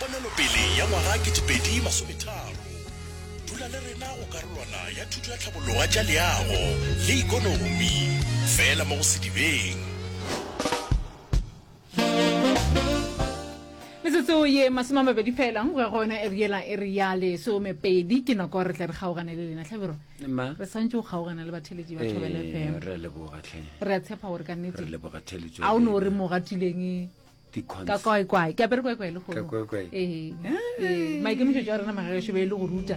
Ponelopele ya ngwaga 2030 Dula le rena go karolwana ya thuto ya tlhabologa tša leago le ekonomi fela mo go Sedibeng. Metsotso ye masome a mabedi fela go ya go yona eri yela e re ya lesomepedi ke nako re tla re kgaogane le lena tlhabiro Ma? re swantse go kgaogana le batheletši ba thobele Eh, fm re a leboga tlhe re a tshepa gore ka re nnete leboga theletšo ga o ne o re mo gatileng ka kwae kwae ke apere kwae kwae le maikemišetso a rena magaešo be e le go ruta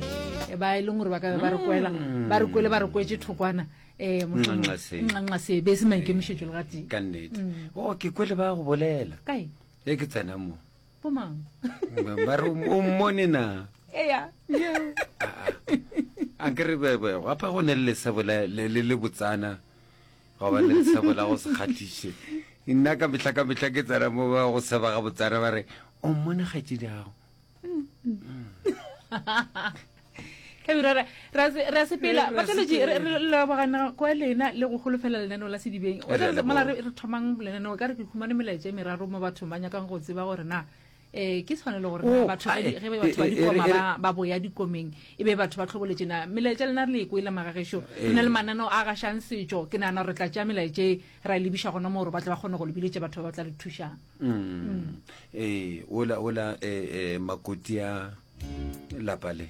e ba e leng gore ba ka be ba re kwela mm. ba re kwele ba re kwetse thokwana um nxanxa se be se maikemišetso le gatee ka nnete mm. o oh, ke kwele ba go bolela kae e ke tsena mo bomang ba re o mmone na eya a ke re gapa go ne le lesebo le botsana Gwa ba le lesego la go se kgahliše. Nna ka mehla ka mehla ke tsena mo ba go seba ga botsana ba re, o mmone kgaetšedi gago. Tlabiro, ra- ra se- ra sepela. Re- ra Bataletši, re- sepela. re lebogana kwa lena le go holofela lenaneo la sedibeng. Re a Re- re- leboga. mola re re thomang lenaneo ka re ke humane melaetša e meraro mo bathong ba nyakang go tseba gore na eh ke tshwanelo gore oh, batho ge be batho ba dikoma ba ba boya dikomeng e be batho ba tlhoboletse na melaetša lena re le ko ile magagesho eh. re na le mananeo a gashang setšo ke nagana gore tla tšea melaetše ra e lebiša gona moo gore ba tle ba kgone go lebiletse batho ba ba tla re thušang mm. mm. ee eh, ola ola um eh, makoti a lapa le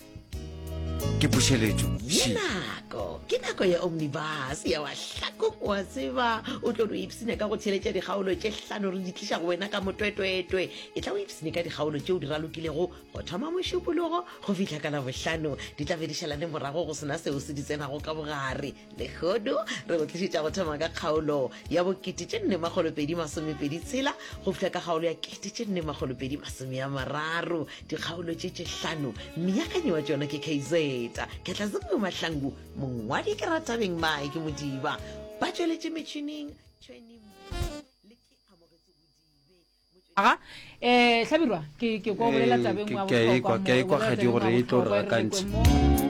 ke pušeletšo ye nako ke nako ya omnibus ya wahlakong wa tseba o tlo no ipsene ka go theletša dikgaolo tše hlano re di tliša go wena ka motwetwetwe e tla o ipsene ka dikgaolo tšeo di ralokilego go thoma mošupologo go fihla ka labohlano di tla be di šalane morago go sena seo se di tsenago ka bogare Lehono re go tlišetša go thoma ka kgaolo ya bokete tše nne makgolo pedi masomepedi tshela go fihla ka kgaolo ya kete tše nne makgolo pedi masome ya mararo dikgaolo tše tše hlano meakanyi wa tšona ke kz ketlazengwe mahlangu mongwadi ke ratabeng mae ke modiba ba tšweletše metšhining aga um hlabirwa ke ko bolela tabeng wa bohlokwa mo ke ekwa gadi gore e tlo re gakantšha